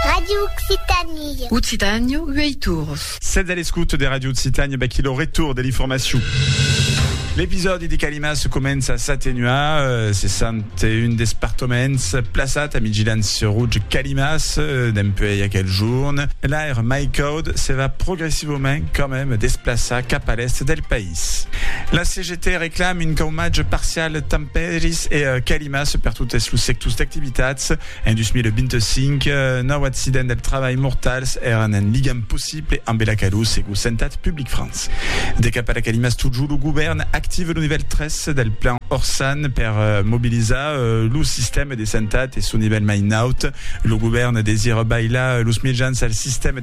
Radio Occitanie. Occitània, uèi torns. Sètz a l'escouta de Radio Occitània, vaquí lo retorn de l'informacion. L'episòdi de Calimas comença a s'atenuar, se sent un despartoments plaçat a Midgilans sur Rouge Calimas dempuèi aquel jorn. L'aire mai caud se va progressivament quand même desplaçar cap a l'èst del país. La CGT Te reclam un caumatge parcial de tempèris e climas per totes los sectors d'activitats. En 2025, nòu accidents del trabalh mortals èran un ligam possible ambe la calor, segur Santat Public France. De cap a la climas totjorn, lo govèrn activa lo nivèl 3 del plan Orsan per mobilizar lo sistèma de santat e son nivèl mai naut. Lo govèrn desira bailar los mejans al sistèma de santat.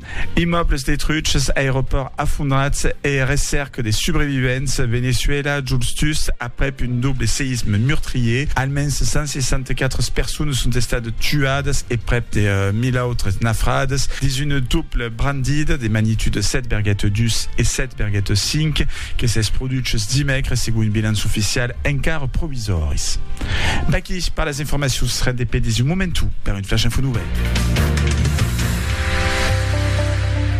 Immòbles detruches, aeropòrt afondrat e recèrca de subrevivents, Veneçuèla, Juls Tus, Aprèp un doble seïsme meurtrier, almens 164 personas son estat tuadas e prèp de 1.000 autres nafradas dins una dobla brandida de magnitude 7,2 e 7,5 que s'es produches dimècres segon un bilanç oficial encara provisòris. Vaquí per las informacions, rendez-pe dins un momentu per un. Flash Info Nouvelles.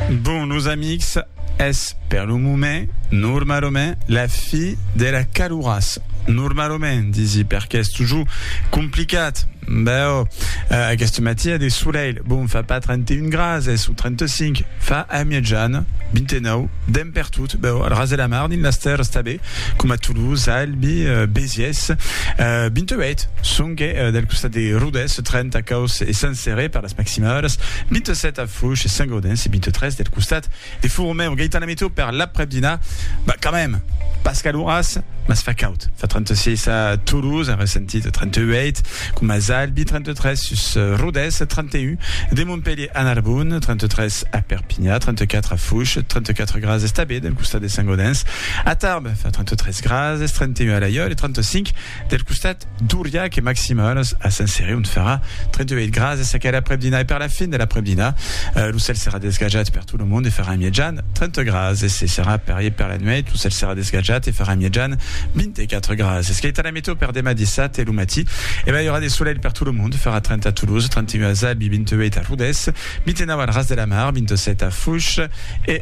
Bon, nos amics, es per lo moment, normalament, la fi de la caluras. Normalament, disi, perque es toujours complicat. Bèu, eh, aquest matí a de soleil, bon, fa pas 31 grads, es o 35, fa a mièjan, 29, demp per tot, bèu, al ras de la mar, dins las terres, està ben. coma Toulouse, Albi, Béziers. 28 songue del costat de Rodés, 30 Causse e Sant Céré per las maximalas, 27 a Fouche e Saint-Gaudens e 23 del costat de Fourmeu. Gaitana Meteo per l'aprèp-dinar, bah, quand même, pas caluras, mas fa caud, fa 36 a Toulouse, arresentit 38, Coma Zalbi, 33, sus Rodés, 31, de Montpelhier a Narbonne, 33, a Perpinha, 34, a Fouche, 34 graas es tabé del costat de Saint-Gaudens, a Tarbes fa 33 graas es 31 a Laiòl e 35 del costat d'Auriac e maximals a Saint-Céré ont farà 38 graas es aquel aprèp-dinà e per la fin de l'aprèp-dinà lo cèl serà desgajat per tot lo mond e farà mièjan 30 graas es se serà parier per la nuèit lo cèl serà desgajat e farà mièjan 24 graas es. E tò per demà dissabte lo matí? E ben i aurà de solelh per tot lo mond, farà 30 a Toulouse, 31 a Zabi, 28 a Rodés, 29 al Ras de la Mar, 27 a Fouches e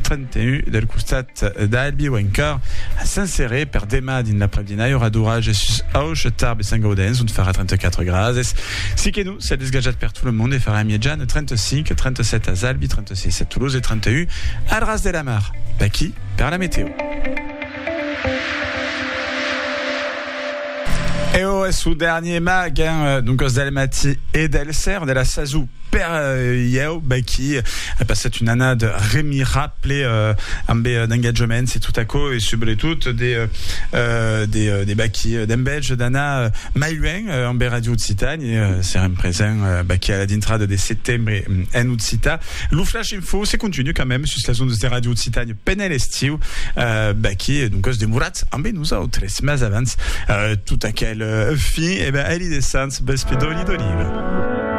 31 del costat d'Albi o encòr a Saint Céré. Per demà dins l'après-dinà i aurà d'orage sus Auch, Tarbes e Sant Gaudens ont farà 34 grades. Si que non, siá desgajat per tot lo mond e farà en mièjan 35, 37 a Zalbi, 36 a Toulouse e 31 al Ras de la Mar. Vaquí per la meteo. Eo es lo dernier mag, hein, doncas del matí e del ser de la sasou per ieu, Baky a passat un annat remirable ambe d'engatjaments e tot aquò e subretot de de de Baky d'enveja d'anar mai luènh ambe Radio Occitània e serem presents Baky a la dintrada de setembre en Occità. Lo flash info se continua quand même sus las ondas de Radio Occitània. Pendent l'estiu, Becky es doncas demorat ambe nosautres, mas abans tot aquel fin, e ben, eli de Sants, bespedòli d'oliva.